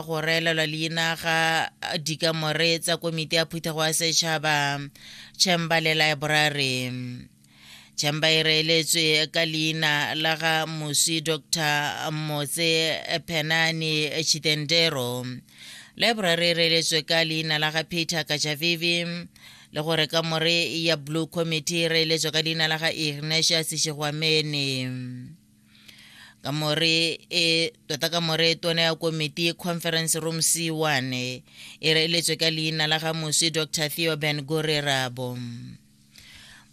go reelelwa leina ga dikamore tsa komiti ya phuthego ya setšhaba chamber le laeborari chamber e reeletswe ka leina la ga mosi dr motse phenane chitendero laeborari e reeletswe ka leina la ga peter kajavivi le gore ka more ya blue committee e reeletswe ka leina la ga ignatius shegwamene ka more e tota ka more tona ya komiti conference room c one e reeletswe ka leina la ga moswi dr theo ben gorerabo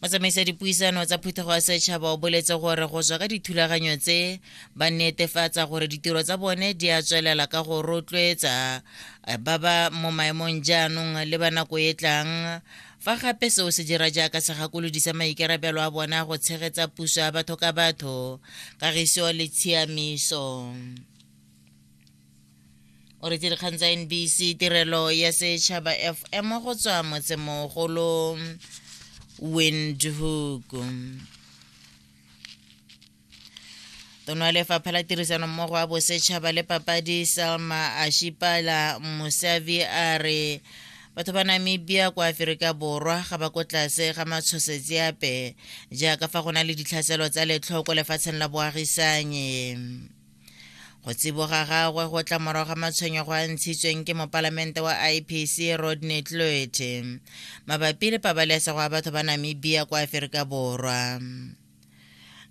motsamaisa dipuisano tsa phuthego ya setšhaba o boletse gore go tswa ka dithulaganyo tse ba netefatsa gore ditiro tsa bone di a tswelela ka go rotloetsa eh, ba ba mo maemong jaanong le ba nako e tlang fa gape seo se dira jaaka segakolodi sa maikarabelo a bona go tshegetsa puso ya batho ka batho kagiso le tshiamiso o retse dikgang tsa nbc tirelo ya setšhaba fm go tswa motsemogolo windhoek tono ya lefapha la tirisano mmogo wa bosetšhaba le papadi selma ashipala mosavi a re batho ba namibia kwa aferika borwa ga ba ko tlase ga matshosetsi ape jaaka fa go na le ditlhaselo tsa letlhoko lefatsheng la boagisanye go tsiboga gagwe go tla morago ga matshwenyego a ntshitsweng ke mopalamente wa ipc rodney tloete mabapi le pabalesego ya batho ba namibia kwa aferika borwa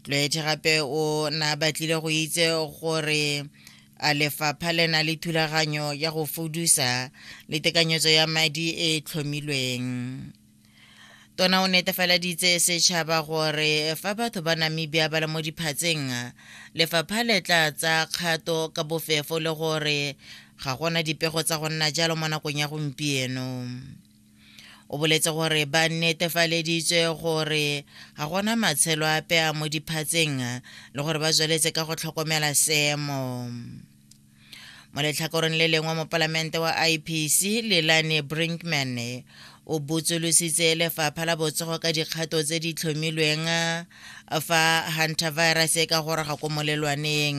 tlwaethe gape o na batlile go itse gore a lefapha le na le thulaganyo ya go fudusa le tekanyetso ya madi e e tlhomilweng tona o netefaleditse setšhaba gore fa batho ba namibia ba le mo diphatseng lefapha le tla tsa kgato ka bofefo le gore ga gona dipego tsa go nna jalo mo nakong ya gompieno o boletse gore ba netefaleditswe gore ga gona matshelo ape a mo diphatseng le gore ba tsweletse ka go tlhokomela seemo mo letlhakoreng le lengwe mopalamente wa ipc lelane brinkman o botsolositse lefapha la botsogo ka dikgato tse di tlhomilweng fa hunter virus e ka goroga ko molelwaneng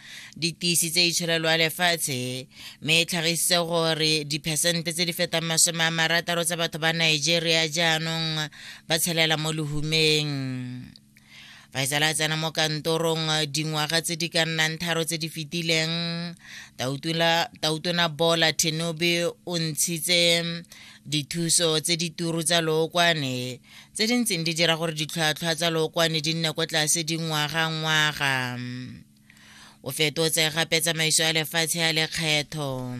di tiisitse itshirelo ya lefatshe mme e tlhagisitse gore diphesente tse di fetang masome a marataro tsa batho ba nigeria jaanong ba tshelela mo lehumeng faisala a tsena mo kantorong dingwaga tse di ka nnang tharo tse di fetileng tautona bola tenobe o ntshitse dithuso tse di turu tsa lookwane tse di ntseng di dira gore ditlhwatlhwa tsa lookwane di nne kwa tlase dingwaga ngwaga o fetotse gape tsamaiso ya lefatshe ya lekgetho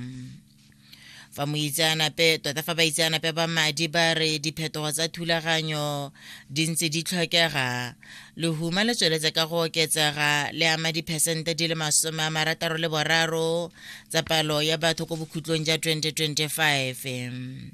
fa moitseanape tota fa baitseanape ba madi ba re diphetogo tsa thulaganyo di ntse di tlhokega lehuma le tsweletse ka go oketsega le ama diphesente di le masome a marataro le boraro tsa palo ya batho ko bokhutlong ja 2025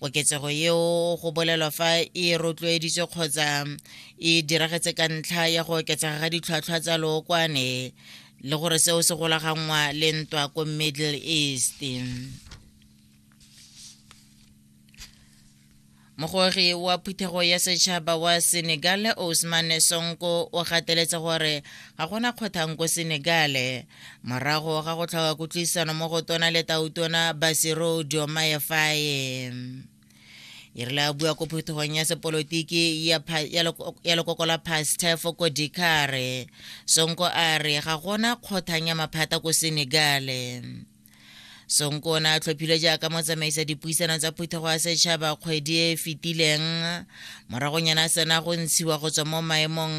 koketsego yeo go bolelwa fa e rotloeditswe kgotsa e diragetse ka ntlha ya go oketsega ga ditlhwatlhwa tsa lookwane le gore seo se golaganngwa le ntwa ko middle east mogogi wa phuthego ya setšhaba wa senegal osman sonko o gateletse gore ga gona kgothang ko senegale morago ga go tlhoka kutlwisano mo go tona le tautona basero diomaye faye e rile a bua ko phutogong ya sepolotiki ya lekoko la pastefo ko dikare sonko a re ga gona kgothang ya maphata ko senegale sonko o ne a tlhophile jaaka motsamaisa dipuisano tsa phuthego ya setšhaba kgwedi e e fetileng moragonyana a sena go ntshiwa go tswa mo maemong